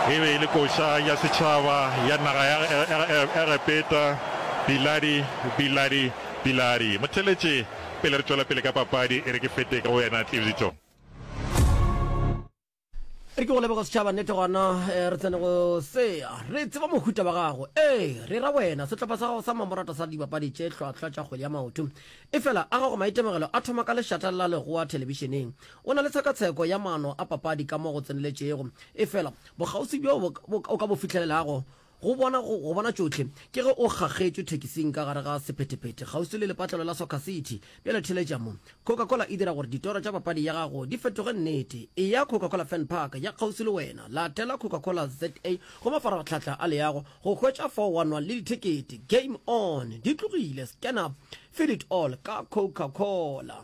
E be e le koša ya setšhaba ya naga ya Egepeta. Biladi, Biladi, Biladi. Mo theletše pele re tšwela pele ka papadi, e re ke fete ka go wena, Tlibišo. re ke go leboga setšhaba nnete gona eh, re tsene go sea re tseba mohuta wa gago ee re ra wena setlhopha sa gago sa mamorata sa dibapadi tše tlhwatlhwa tša kgwedi ya maoto e fela a gago maitemogelo a thoma ka lešata la legoa thelebišeneng o na le tshekatsheko ya maano a papadi ka mo go tseneletšego e fela bokgausi bjo o ka bo fihlelelago Go bona, go, go bona tšohle. Ke ge o kgakgetšwe thekising ka gare ga sephetephete, kgauswi le lepatlelo la Soccer City. Bjale theletša mo. Coca-Cola e dira gore ditoro tša papadi ya gago di fetoge nnete. Eya Coca-Cola Fan Park ya kgauswi le wena. Latela Coca-Cola ZA go mafaratlhatla a leago go hwetša fao wa nwa le dithekete. Game on! Di tlogile. Scan up. Feel it all ka Coca-Cola.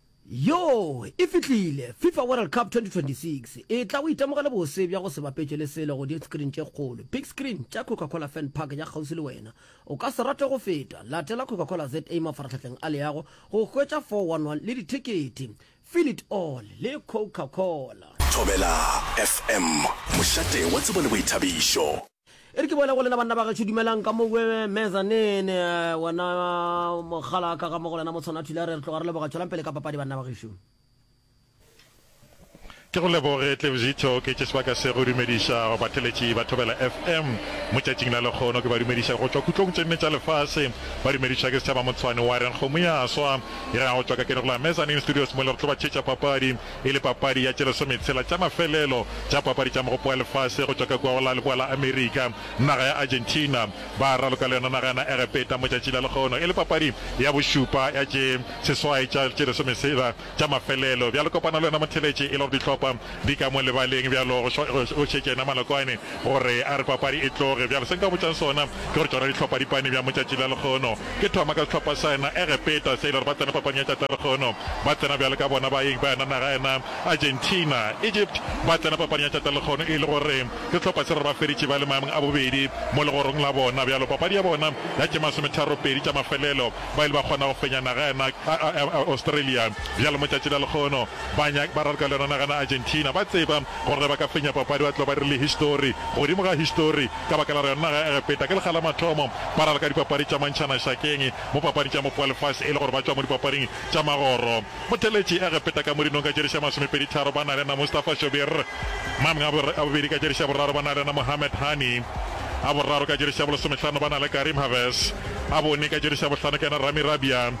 Yoo, e fihlile! Fifa World Cup 2026 e tla go itemogela bose bja go se bapetšwe le selo go diskrin tše kgolo, big screen, tša Coca-Cola Fan Park ya kgauswi le wena. O ka se rate go feta! Latela Coca-Cola ZA mafarahlahleng a leago go hwetša 411 le dithekete. Feel it all le Coca-Cola! Thobela FM, mošate wa tsebo le boithabišo. E re ke boele go lena banna ba gešo, dumelang ka mo kwe mezzanine. Eh, wena mogala ka ga mo go lena motshwana thula, re re tloga re leboga tšwelang pele ka papadi banna ba gešo. Ke go leboge Tlevzitho Oketše sebaka se go dumediša batheletši ba Thobela FM mo tšatšing la lekgono. Ke ba dumediša go tšwa kutlong tše nne tša lefase. Ba dumedišwa ke Sethaba Motshwane wa reng kgomo ya swa. E re a go tšwa ka ke re go la Mezzanine Studios mo le re tlo ba thetša papadi. e le papadi ya tše lesometshela tša mafelelo tša papadi tša Mogopo wa Lefase go tšwa ka kua go la Leboa la Amerika. Naga ya Argentina ba raloka le yona naga ya na Egepeta mo tšatši la legono e le papadi ya bošupa ya tše seswai tša tše lesomesela tša mafelelo. Bjale kopano le yona motheletše e le gore dihlopha di ka mo lebaleng bjalo go šetša yena Malokwane. Gore a re papadi e tloge bjalo, se nka botšang sona ke gore tšona dihlopadipane bja motšatši la lekgono ke thoma ka sehlopha sa yena Egepeta se e le gore ba tsena papading ya tšatši la lekgono ba tsena bjalo ka bona baeng ba yona naga ya yena Argentina. Egypt ba tsena papading ya tšatši la lekgono e le gore ke sehlopha se e le gore ba feditše ba le maemong a bobedi mo legorong la bona bjalo papadi ya bona ya tše masometharo pedi tša mafelelo ba ile ba kgona go fenya naga ya yena Australia bjalo motšatši la lekgono ba ba raloka le yona naga ya yena Argentina ba tseba Gore ba ka fenya papadi ba tlo ba dirile histori godimo ga histori ka baka la gore naga ya Egepeta ke lekga la mathomo ba ralka dipapadi tša mantšhana šakeng mo papading tša mopo wa lefase e le gore ba tšwa mo dipapading tša magoro. Botheletši Egepeta ka modinong ka tšeriša masomepedi tharo ba na le na Mustafa Shobir Mann a bobedi ka tšeriša boraro ba na le na Mohamed Hani a boraro ka tšeriša bolosomehlano ba na le Karim Haves a bone ka tšeriša bohlano ke na Rami Rabia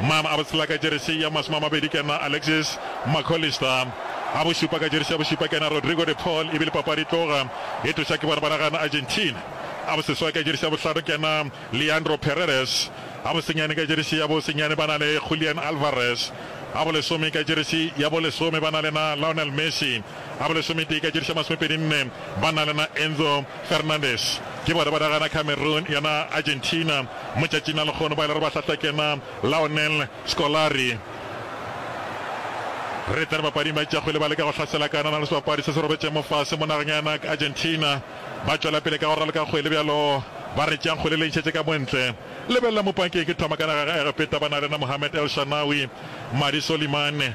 Mma a botsela ka jeresi ya masome a mabedi ke nna Alexis McAllister, a bošupa ka jeresi ya bošupa ke nna Rodrigo de Paul e bile papadi e tloga e tloša ke bona ba naga Argentina, a boseswai ka jeresi ya bohlano ke nna Leandro Paredes, a bosenyane ka jeresi ya bo senyane ba na le Julian Alvarez, a bolesome ka jeresi ya bo lesome ba na le na Lionel Messi. A ba lesometee ka tšediša masomepedi nne ba na lena Enzo Fernandez ke bona ba ragana Cameroon yona Argentina motšatšing a lekgono ba ile re ba hlahlakena Laonel Scolari re tsene bapading ba tša kgwele ba leka go hlasela ka nana le sebapadi se se robetšeng mofase mo nageng yana Argentina ba tšwela pele ka go raloka kgwele bjalo ba re tšeang kgwele le ntšhetše ka montle lebelela mopang ke eng ke thoma ka nageng ga Egepeta ba na lena Mohamed El Shanawi Madi Solimane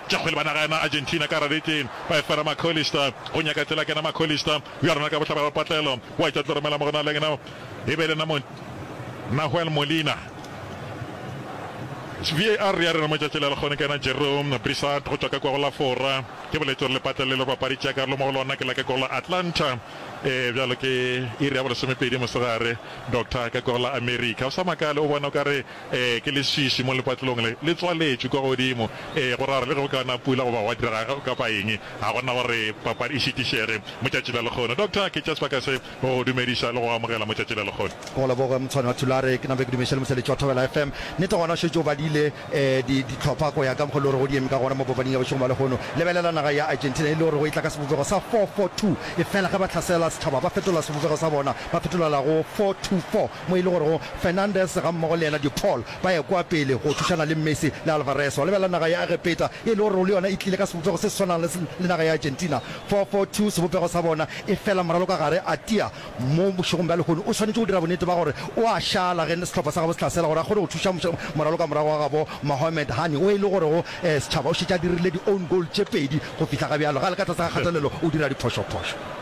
tša kgwele ba naga ya na Argentina ka Raretleng ba efera McAllister go nyaka tsela kena McAllister bja rona ka bohlabela ba patlelo wa tša tlo romela mo go na leng na e be le na mo Nahuel Molina VAR ya rena mo tšatši le le kgone kena Jerome Brissart go tšwa ka kwa go la Fora ke boletše gore le patlelo le bapadi tša karolo mo go lona ke la ka kwa go la Atlanta e bjalo ke iri ya bolesomepedi mosegare Doctor ka kwa go la America o sa makale o bona o ka re Ee, ke leswiswi mo lepatlelong le, le tswaletšwe kwa godimo. Ee, go ra gore le ge go ka na pula goba gwa direga kapa eng, ga go na gore papadi e šitišege mo Tšatši la Lekgono. Doctor, ke tša sebaka se go go dumediša le go go amogela mo Tšatši la Lekgono. Go leboge, Motshwani wa Thulare. Ke nabe ke dumeše le Moseletši wa Thobela FM. Nnete gona o šetše o badile di, dihlopha go ya ka mokgwa e le gore go di eme ka gona mo papading ya bošegong bja lehono. Lebelela naga ya Argentina e le gore go e tla ka sebopego sa four-four-two, efela ge ba hlasela setšhaba ba fetola sebopego sa bona, ba fetolela go four-two-four. mo e le gorego Fernandes gammogo le yena de Paul ba ekwa pele go thušana le Messi le Alvarez go lebelela naga ya Egepeta e le gorego le yona e tlile ka sebopego se se swanang le le naga ya Argentina 4-4-2 sebopego sa bona e fela moralo ka gare a tia mo bošegong bja lehono o swanetše go dira bonnete ba gore o a šala ge sehlopha sa gabo se hlasela gore a kgone go thuša moralo ka morago ga gabo Mohamed Hani o e le gorego setšhaba o šetše a dirile di own goal tše pedi go fihla ga bjalo ga le ka tlase ga kgatelelo o dira diphošophošo.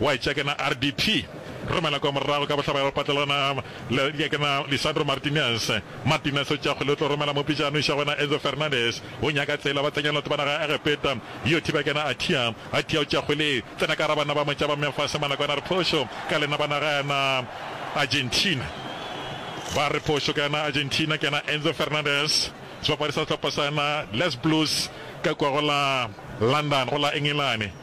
Wa etša ke na RDP romela kwa morago ka bohlabela patlelana le ke ke na Lisandro Martinez Martinez o tšakgwe le tlo romela mopitšano iša go na Enzo Fernandez o nyaka tsela ba tsenya lotho bana ga Egepeta yo thiba ke na Atia Atia o tšakgwe le tsena ka ra bana ba motša ba mefase mana kwana re phošo ka lena bana ga na Argentina ba re phošo ka na Argentina ke na Enzo Fernandez sebapadi sa sehlopha sa na Les Blues ka kwa go la London go la Engelane.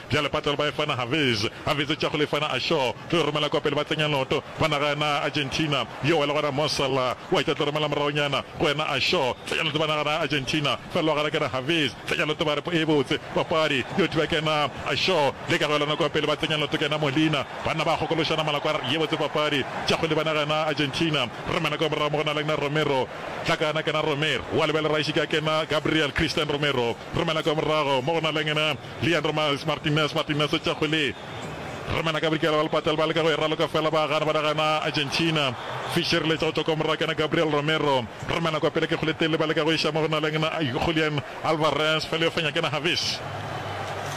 Bjale Patal ba efana Haviz, Haviz tša go lefana a Shaw, tlo e romela kwa pele ba tsenya noto, ba naga yana Argentina, yo wela gona Mo Salah, wa tša tlo romela moragonyana go yena a Shaw, tsenya noto ba naga yana Argentina, fa lwa gana kena Haviz, tsenya noto ba re po e botse, papadi yo thiba kena a Shaw, le ka go elana kwa pele ba tsenya noto kena Molina, banna ba gokološana malako a re ye botse papadi, tša kgwele ba naga yana Argentina, romela kwa morago mo go na leng na Romero, hlakana kena Romer, wa lebele Raisika kena Gabriel, Christian Romero, romela kwa morago mo go na leng na. Leandro Miles Martinez Martinez o tšegwe le Remena Gabrikela ba lepata le ba leka go e raloka fela ba gana ba ra gana Argentina Fischer letša go tšwa kwa morwa kena Gabriel Romero Remena kwa pele ke Goletele ba leka go iša mo go na leng Julian Alvarez fela yo fenya kena Havis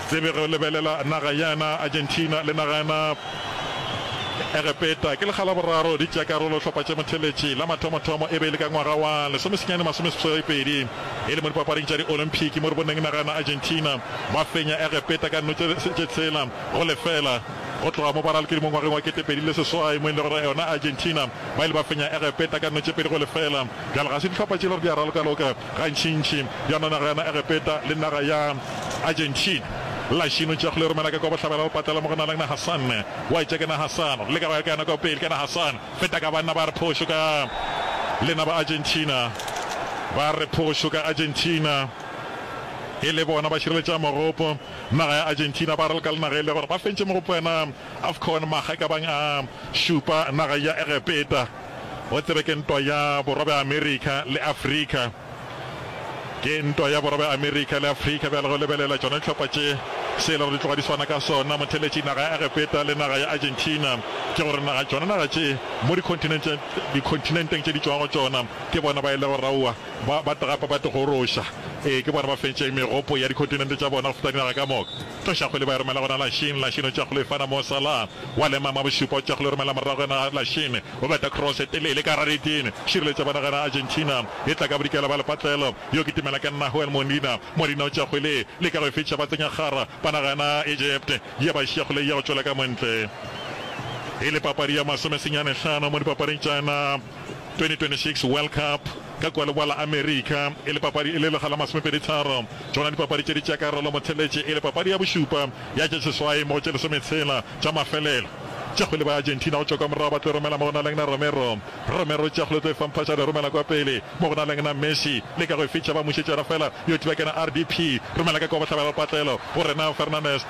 Tsebe go lebelela naga yana Argentina le naga yana Egepeta ke lekga la boraro di tšea karolo hlopha tše motheletši la mathomo thomo e be e le ka ngwaga wa lesomesenyane masomeseswai pedi. e le mo dipapading tša di-olympic mo re boneng naga ya Argentina ba fenya Egepeta ka dino tše tshela go lefela go tloga mo ba ralokile mo ngwageng wa kete pedi le seswai mo e lego yona Argentina ba ile ba fenya Egepeta ka dino tše pedi go lefela. Bjale ga se dihlopha tše le gore di a ralokaloka gantšintši bjana naga ya Egepeta le naga ya Argentina la šino tšakgolo e romela ka kwa bohlabela bopatlela mo go na le naha sanne wa etša ke naha sano le ka go ya ka yona ka pele ke naha sano Feta ka banna ba re phošo ka lena ba Argentina. Ba re phošo ka Argentina. E le bona ba šireletšago mogopo naga ya Argentina. Ba re ka lena ge e le gore ba fentše mogopo yena Afcon makga e ka bang a šupa naga ya Egepeta. O tsebe ke ntwa ya Borwa bja Amerika le Afrika. Ke ntwa ya borobe Amerika le Afrika bjale go lebelela tšona dihlopha tše. Se e le gore di tloga di swana ka sona motheletši naga ya Egepeta le naga ya Argentina ke gore naga tšona naga tše mo dikhonthinenteng tše di tšwago tšona ke bona ba e lego raua ba ba tagapa ba tigoroša ee ke bona ba fentšeng megopo ya dikhonthinente tša bona go feta dinaga ka moka. Tlošakgwele ba e romela gona Lachine, Lachine o tšea kgwele o e fana mo Salah, wa lemama Bošupa o tšea kgwele o e romela morago yena Lachine o beta cross e telele ka gare ga neteng, šireletša bona gana Argentina e tla ka bodikela ba lepatlelo, yo ke timela ke Nahuel Molina, Molina o tšea kgwele e leka go e fetša ba tsenya kgara bona gana Egypt ye ba šiya kgwele e ya go tšwela ka montle. E le papadi ya masome senyane hlano mo dipapading tša yona. 2026 World Cup ka kua Leboa la Amerika e le papadi e le lega la masomepedi tharo. Tšona dipapadi tše di tšea karolo motheletše e le papadi ya bošupa ya tše seswai mo go tše lesometshela tša mafelelo tša kgwele ba Argentina go tšwa kwa morago ba tlo romela mo go na lengna Romero Romero tša kgwele tlo e famphatša le romela kwa pele mo go na lengna Messi leka go e fitšha ba mušetšana fela yo tibakena RDP romela ka kwa bohlabela lepatlelo go rena Fernandes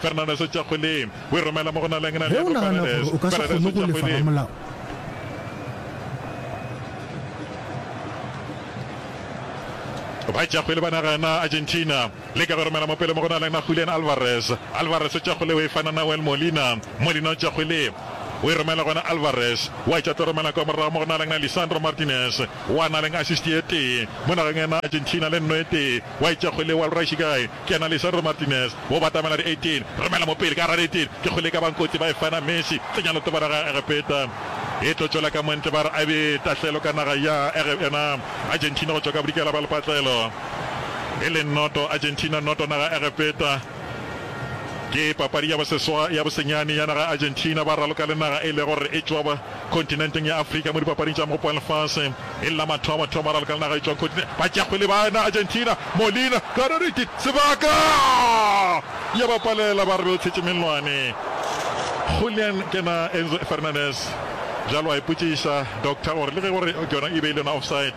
Fernandes o tšwa kgole, o e romela mo go na leng Ge o nagana gore o ka se kgone go lefa ramolao, Ba tšwa kgole ba naga ya na Argentina, leka go e romela mo pele mo go na leng na Julian Alvarez. Alvarez o tšwa kgole, o e fa na Nahuel Molina. Molina o tšwa kgole, o e romela go na Alvarez, o a tšwa tlo romela kwa morago mo go na leng na Lisandro Martinez. O a na leng assist ye tee mo nageng ya na Argentina le nno ye tee, wa e tšwa kgole wa lrashi kae? Ke na le Sandro Martinez, wo batamela di 18, romela mo pele ka gare 18, ke kgole e ka ba nkoti ba e fana Messi, tsenya letobana ga Egepeta e tlo tšwela ka mwantle ba re a be tahlelo ka naga ya Ege yona Argentina go tšwa ka bodikela ba lepatlelo e le noto Argentina noto naga Egepeta ke papadi ya boseswa ya bosenyane ya naga Argentina ba raloka le naga e lego gore e tšwa Kontinenteng ya Afrika mo dipapading tša Mopo wa Lefase e le la mathomo, batho ba mararo ka naga e tšwago kontinenteng ba tšea kgwele ba ena, Argentina, Molina, Karoriti, Sebaka! Ya ba palela ba re be o tshetše mellwane. Julian ke na Enzo Fernandez bjalo a ipotšiša doctor gore le ge gore ke yona e be e le yona offside,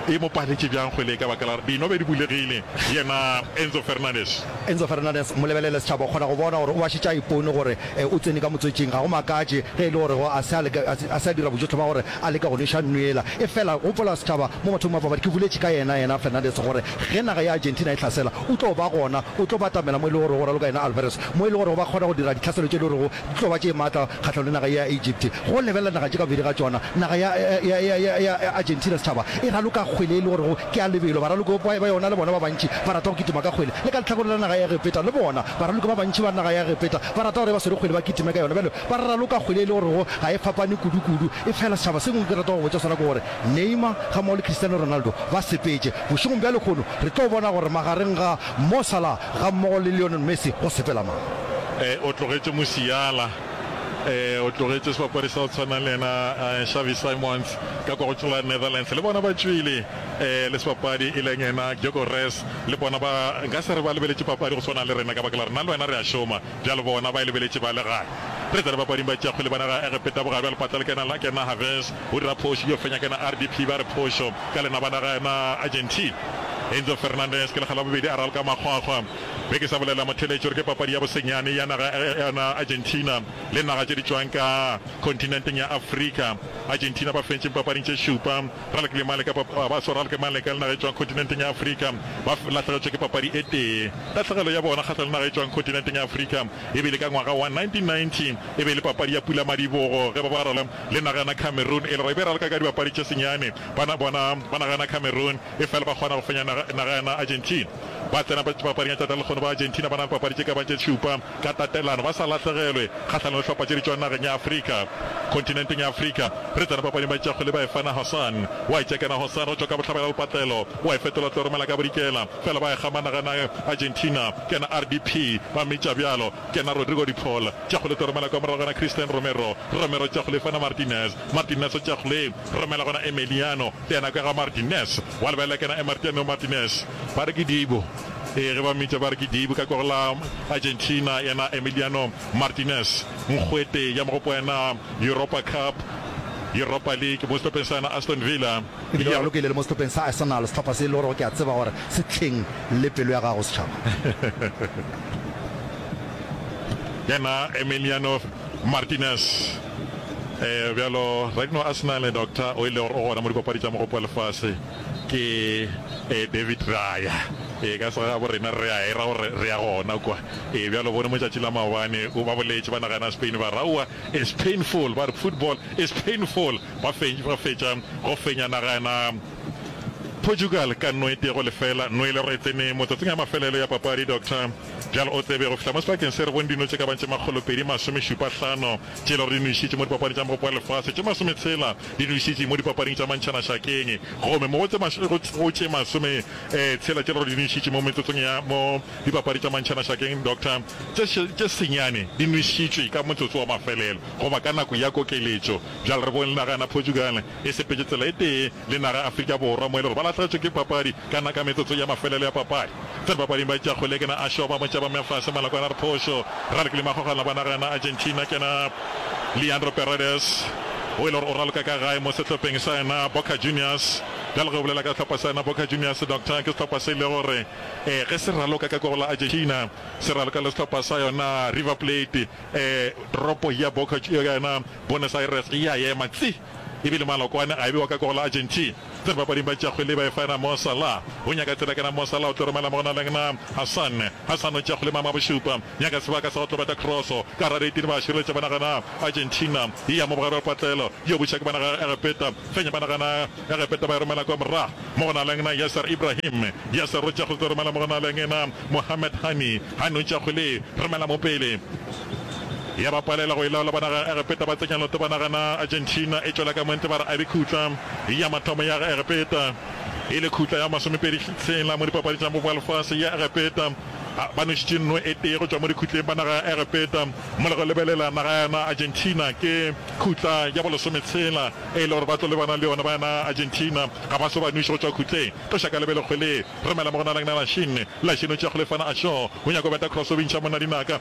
e mo paletše bjang kgwele ye ka baka la dinobe di bulegile? Yena Enzo Fernandez. Enzo Fernandez, Mo lebelele setšhaba, o kgona go bona gore o ba šetše a ipone gore o tsene ka motswetšing. Ga go makatše ge e le gore go a se a leka, a se a dira bojotlhe ba gore a leka go nweša nnu yela. Efela gopola setšhaba, mo mathomong a papadi ke boletše ka yena, yena Fernandez, gore ge naga ya Argentina e hlasela, o tlo ba gona, o tlo batamela mo e le gorego, raloka yena Alvarez, mo e le gorego ba kgona go dira ditlhaselo tše e le gorego di tlo ba tše matla kgahlanong le naga ye ya Egypt. Go lebelela naga tše ka bobedi ga tšona, naga ya ya ya ya ya Argentina setšhaba e raloka kgwele e le gorego ke ya lebelo. Baraloki ba ba yona le bona ba bantši ba rata go kitima ka kgwele. Le ka lehlakoreng la naga ya Egepeta le bona, baraloki ba bantši ba naga ya Egepeta ba rata gore e ba swere kgwele ba kitime ka yona. Bjale ba raloka kgwele e le gorego ga e fapane kudukudu. Efela setšhaba se sengwe ke rata go botša sona ke gore Neymar gammogo le Cristiano Ronaldo ba sepetše. Bošegong bja lehono re tlo bona gore magareng ga Mo Salah Gammogo le Lionel Messi go sepela mano. Ee, o tlogetše Musiala. Ee, o tlogetše sebapadi sa go tshwana le yena Xavi Simons ka kwa go tšhola Netherlands. Le bona ba tšwile. Ee, le sebapadi e leng yena Gyökeres. Le bona ba nka se re ba lebeletše papadi go swana le rena ka baka la gore nna le wena re a šoma. Bjale bona, ba e lebeletše ba le gae. Re tsene papading ba tšea kgwele ba naga Egepeta bogare bja lepata le kena la kena Haves o dira phošo yo fenya kena RDP ba re phošo ka lena ba naga ena Argentine Enzo Fernandez ke lekga la bobedi a ralka makgwakgwa be ke sa bolelela motho eletše gore ke papadi ya bosenyane ya naga ena Argentina le naga tše di tšwang ka kontinenteng ya Afrika Argentina ba fentšeng papading tše šupa Ralke le Maleka ba baso Ralke Maleka le naga e tšwang kontinenteng ya Afrika ba lahlegetšwe ke papadi e tee. Tahlegelo ya bona kgahlano le naga e tšwang kontinenteng ya Afrika e bile ka ngwaga wa 1990 e be e le papadi ya pulamadibogo ge ba barela le naga yona Cameroon e le gore e be e ralka ka dibapadi tše senyane bana bona ba naga yona Cameroon efela ba kgona go fenya naga yona Argentina ba tsena paparing ya tšatla la lekgono ba Argentina ba na le papadi tše ka bago tše šupa ka tatelano ba sa lahlegelwe kgahlanong le hlopha tše di tšwang nageng ya Afrika, kontinenteng ya Afrika. Re tsena papading ba itša go le Baefana Hassan, wa itša kena Hassan go tšwa ka bohlabela le patlelo, wa e fetola tlo romela ka bodikela, fela ba e gama nageng ya Argentina, kena RDP, ba mmitša bjalo, kena Rodrigo de Paul, tša go le tlo romela kwa morago gona Christian Romero, Romero tša go le fana Martinez, Martinez o tša go le romela gona Emeliano, yena ka ga Martinez, wa lebelela kena Emertiano Martinez, ba re ke Dibo. Ee, ge ba mmitša ba re ke Dibu ka kwego la Argentina, yena Emiliano Martinez, nkgwete ya mogopo yena Europa Cup, Europa League, mo sehlopheng sa yena Aston Villa. E bile o ralokile le mo sehlopheng sa Arsenal, sehlopha se e le gorego ke a tseba gore se hleng le pelo ya gago, Setšhaba. Yena Emiliano Martinez, ee, bjalo radino Arsenal, Doctor, o e le gore o gona mo dipapadi tša mogopo wa lefase. Ke ee, David, ra ya. Ee, ka se gabo rena re a e ra gore re ya gona kwa. Ee, bjale o bone motšatši la maobane o ba boletše ba naga ya Spain ba re, Aowa, it's painful, ba re, football is painful. Ba fentš, ba fetša go fenya naga ya na Portugal ka no e tee go lefela. No e le gore e tsene motsatsing a mafelelo ya papadi, Doctor. Bjale o tsebe go fihla mo sebakeng se re bone dino tše ka bago tše makgolopedi masomešupahlano. Tšelo re nwešitše mo Dipapading tša Mogopo wa Lefase tše masometshela, di nwešitše mo Dipapading tša Mantšhana Šakeng gomme mo go tše masometshela tše re di nwešitše mo metsotsong ya mo Dipapadi tša Mantšhana Šakeng, Doctor, tše senyane di nwešitšwe ka motsotso wa mafelelo goba ka nako ya kokeletšo. Bjale re bone le naga ya Portugal e sepetše tsela e tee le naga ya Afrika Borwa mo e le gore ba lahlegetšwe ke papadi Kana ka metsotso ya mafelelo ya papadi, ge bapaling ba tšea kgole ke na a šoba motšaba mme a fase maloko a na re phošo. Ra lekile magogana ba naga ya na Argentina ke na Leandro Paredes o e le gore o raloka ka gae mo sehlopheng sa ya na Boca Juniors. Bjale ge o bolela ka sehlopha sa ya na Boca Juniors Doctor ke sehlopha se e le gore ee ge se raloka ka kwa go la Argentina se raloka le sehlopha sa yo na River Plate ee toropo ya Boca ya na Buenos Aires e a ema tsi. E bile Malokwane a ebiwa ka goal la Argentina. Tsene bapading ba tšakgwe le ba efana Mo Salah o nyaka tsela kana Mo Salah o tlo romela mo go na leng na Hassan. Hassan o tšakgwe le mama bošupa nyaka sebaka sa go tlo beta cross ka gare etile ba šireletša ba nagana Argentina e ya mo bogare ba patlelo yo buša ke ba naga Egepeta fenya ba nagana Egepeta ba e romela kwa morago mo go na leng na Yasser Ibrahim. Yasser o tšakgwe tlo romela mo go na leng na Mohamed Hani. Hani o tšakgwe le romela mo pele. ya ba palela go e laola ba naga ya Egepeta ba tsenya noto ba naga na Argentina e tšwela ka montle ba re a be khutla ya mathomo ya Egepeta e le khutla ya masomepedi tshela mo dipapading tša moba wa lefase ya Egepeta ba nwešitše nno e tee go tšwa mo dikhutleng ba naga ya Egepeta mo le go lebelela naga ya na Argentina ke khutla ya bolesome tshela e le gore ba tlo le bana le yona ba na Argentina ga ba so ba nweše go tšwa khutleng tloša ka lebelekgwe le romela mo go na leng na Lashin Lashin o tšea kgolefana a šo o nyaka go beta cross o bintšha monna dinaka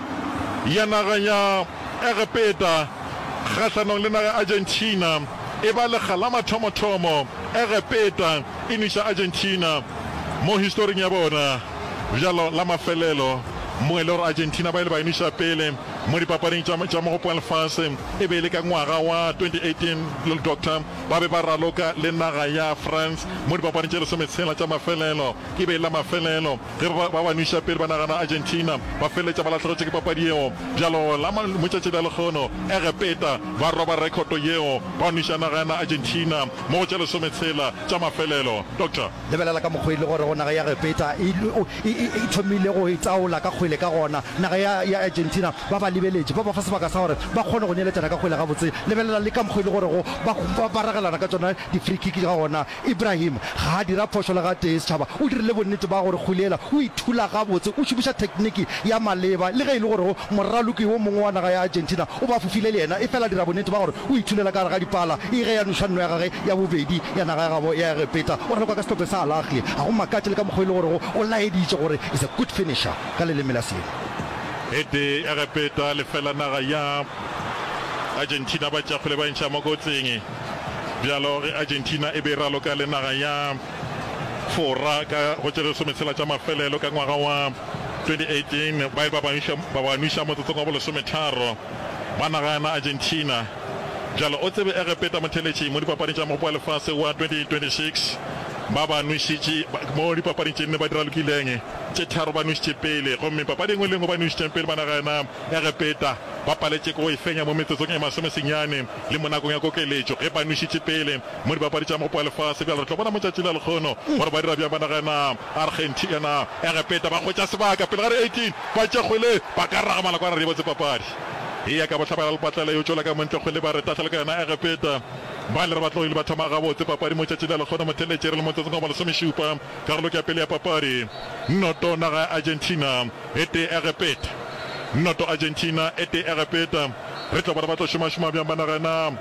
ya naga ya Egepeta kgahlanong le naga ya Argentina e ba lekga la mathomothomo Egepeta e nwiša Argentina mo historing ya bona bjalo la mafelelo mo e le gore Argentina ba ile ba e nwiša pele mo dipapading tša Mogopo wa Lefase e be e le ka ngwaga wa 2018 Doctor ba be ba raloka le naga ya France mo dipapading tše lesometshela tša mafelelo e be e le la mafelelo Ge ba ba nweša pele ba nagana Argentina, ba feleletša ba lahlegetšwe ke papadi yeo. Bjalo la motšatši bja lekgono, Egepeta ba roba rekhoto yeo, ba nweša naga ya Argentina mo go tše lesome tshela tša mafelelo. Doctor. Lebelela ka mokgo e lego gore naga ya Egepeta e thomile go itaola ka kgwele ka gona. Naga ya Argentina ba ba lebeletše, ba ba fa sebaka sa gore ba kgone go neeletšana ka kgwele gabotse. Lebelela le ka mokgo e lego gore ba ragelana ka tšona di-free kick ka gona. Ibrahim ga a dira phošo le gatee. Setšhaba o dirile bonnete ba gore kgwele yela o e thula gabotse, o šomiša thekniki ya maleba. Le ge e le gorego moraloki wo mongwe wa naga ya Argentina o ba fofile le yena, efela a dira bonnete ba gore o e thulela ka gare ga dipala. E ge ya nuša nno ya gage ya bobedi ya naga ya gabo ya Egepeta, o ralokwa ka sehlophe sa Al Ahly. Ga go makatše le ka mokgwa e le gorego o laeditše gore is a good finisher ka leleme la Sele. Ete Egepeta lefela naga ya Argentina ba tšafele ba e ntšha mo kotsing. Bjalo ge Argentina e be e raloka le naga ya Fora ka go tše lesome tshela tša mafelelo ka ngwaga wa 2018, baye ba ba nwiša motsotsong wa bolesometharo ba naga ya na Argentina. Bjalo o tsebe Egepeta motheletši mo dipapading tša Mogopo wa Lefase wa 2026 ba ba nwešitše mo dipapading tše nne ba di ralokileng tše tharo ba nwešitše pele gomme papadi engwe le engwe ba nwešitšeng pele ba naga ya na Egepeta ba paletše ke go e fenya mo metsotsong e masome senyane. Le mo nakong ya kokeletšo, ge ba nwešitše pele mo Dipapadi tša Mopo wa Lefase, bjale re tlo bona mo tšatšing la lekgono gore ba dira bjang ba nagana Argentina. Egepeta ba hwetša sebaka pele ga re 18 ba tše kgole, ba ka raga malakwana re di botse papadi e ya ka bohlabela le patlela yo tšola ka montle kgole ba re tahlela ka yona Egepeta. Ba le re ba tlogile ba thoma gabotse papadi mo tšatšing la lekgono motheletše re le motsotsong wa masomešupa karolong ya pele ya papadi. Nnoto naga ya Argentina e tee Egepeta Nnoto Argentina e tee Egepeta. Re tla bona ba tlo šomašoma bjang banna ge na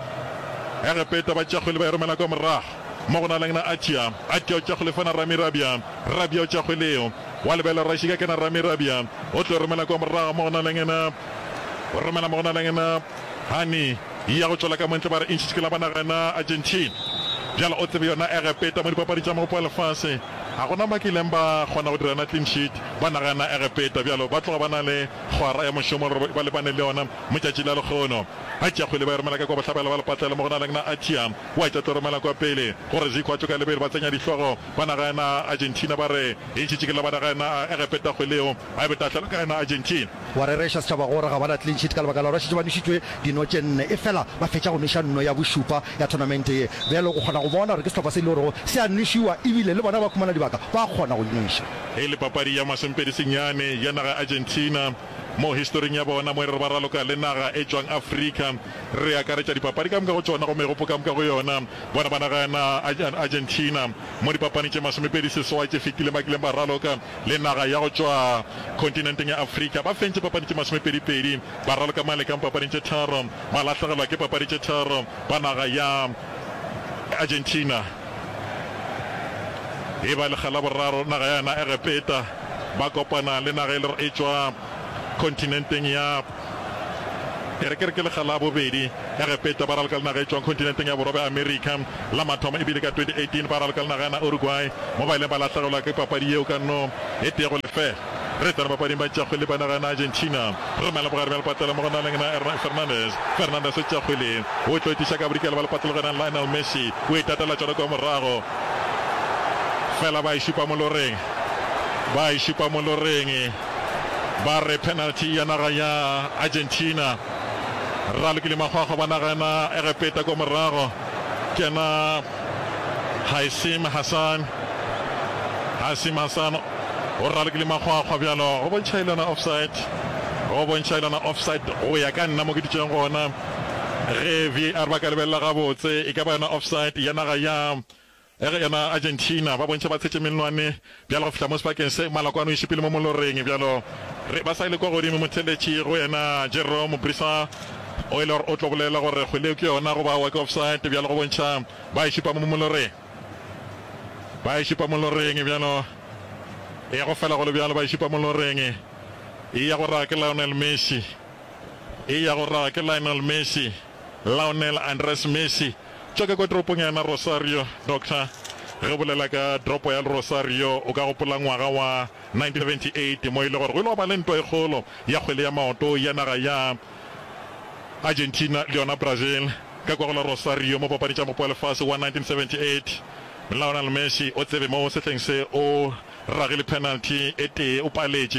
Egepeta ba tša kgwele ba e romela kwa morago mo go na leng na Atia, Atia o tša kgwele fa na Rami Rabia, Rabia o tša kgwele yo wa lebelo Rashika ke na Rami Rabia o tlo e romela kwa morago mo go na leng na o romela mo go na leng na Hani ya go tšwela ka montle ba re Inchich ke la banna ge na Argentina bjale o tsebe yona Egepeta mo dipapadi tša mogopo wa lefase ga go na ba kileng ba kgona go dira na clean sheet banna ge na Egepeta bjalo ba tloga ba na le Kgwara ya mošomo re ba lebane le yona mo tšatši la lekgono. Achiakhwili ba e romela ka kwa bohlabela ba lepatlelo mo go na leng na Achia o a tša tlo romela kwa pele gore Zico a tšo ka lebelo ba tsenya dihlogo ba naga ya na Argentina ba re e šetše ke la ba naga ya na a egepe takgwe leo a e be tahlelo ka ya na Argentina. Wa rereša setšhaba gore ga ba na clean sheet ka lebaka la gore ba šetše ba nwešitšwe dino tše nne efela ba fetša go nweša nno ya bošupa ya thonamente ye. Bjale o kgona go bona gore ke sehlopha se e le gorego se a nwešiwa ebile le bona ba khumana dibaka ba kgona go e nweša. Ge e le papadi ya masempedi senyane ya naga Argentina, mo historing ya bona mo e re re ba raloka le naga e tšwang Afrika, re akaretša dipapadi ka moka go tšona gomme go poka moka go yona, bona ba naga ya Argentina mo dipapani tše masomepedi seswai tše fetileng ba kileng ba raloka le naga ya go tšwa kontinenteng ya Afrika. Ba fentše papadi tše masomepedipedi, ba raloka mang le kang papading tše tharo, ba lahlegelwa ke papadi tše tharo ba naga ya Argentina. E ba lekga la boraro naga yana Egepeta ba kopana le naga e le e tšwa kontinenteng ya E re ke re ke lekga la bobedi Egepeta ba ralka le naga e tšwang kontinenteng ya borwa bja America. La mathomo e bile ka 2018 ba ralka le naga yana Uruguay mo ba ileng ba lahlegelwa ke papadi yeo ka no e tee go lefela. Re tsena papading ba tšeakgwele ba naga ya Argentina. Re romela bogare bja lepatlelo mo go na leng na Hernán Fernández. Fernández o tšeakgwele, o tlo etiša ka bodikela ba lepatlelo go e nang Lionel Messi. O e tatela tšona kua morago. Fela ba e šupa moloreng. Ba e šupa moloreng. Ba re penalty ya naga ya Argentina. Rralokile Makgwakgwa ba naga ya na Egepeta kua morago ke yena Haissim Hassan. Haissim Hassan. go raloke le makgwakgwa bjalo go bontšha ilona offside go bontšha ilona offside go ya ka nna mo ke dutšeng gona ge VAR ba ka lebelela gabotse e ka ba yona offside ya naga ya ge yona Argentina ba bontšha ba tshetše menwane bjalo go fihla mo sebakeng se maloko a no iše pele mo moloreng bjalo re ba sa ile kwa godimo motheletši go yena Jerome Brisa o ile gore o tlo bolela gore kgwele ke yona go ba wa ke offside bjalo go bontšha ba e šupa mo moloreng. Ba e šupa moloreng bjalo. E ya go fela go le bjalo. Ba e šupa moloreng. E ya go raga ke Lionel Messi. E ya go raga ke Lionel Messi. Lionel Andres Messi. Tšwa ke kwa toropong ya yena Rosario. Doctor, ge o bolela ka toropo ya Rosario o ka gopola ngwaga wa 1978 mo e le gore go ile gwa ba le ntwa e kgolo ya kgwele ya maoto ya naga ya Argentina le yona Brazil ka kwa go la Rosario mo papadi tša Mopo wa Lefase wa 1978. Lionel Messi o tsebe mo sehleng se o ragile penalty e tee, o paletše.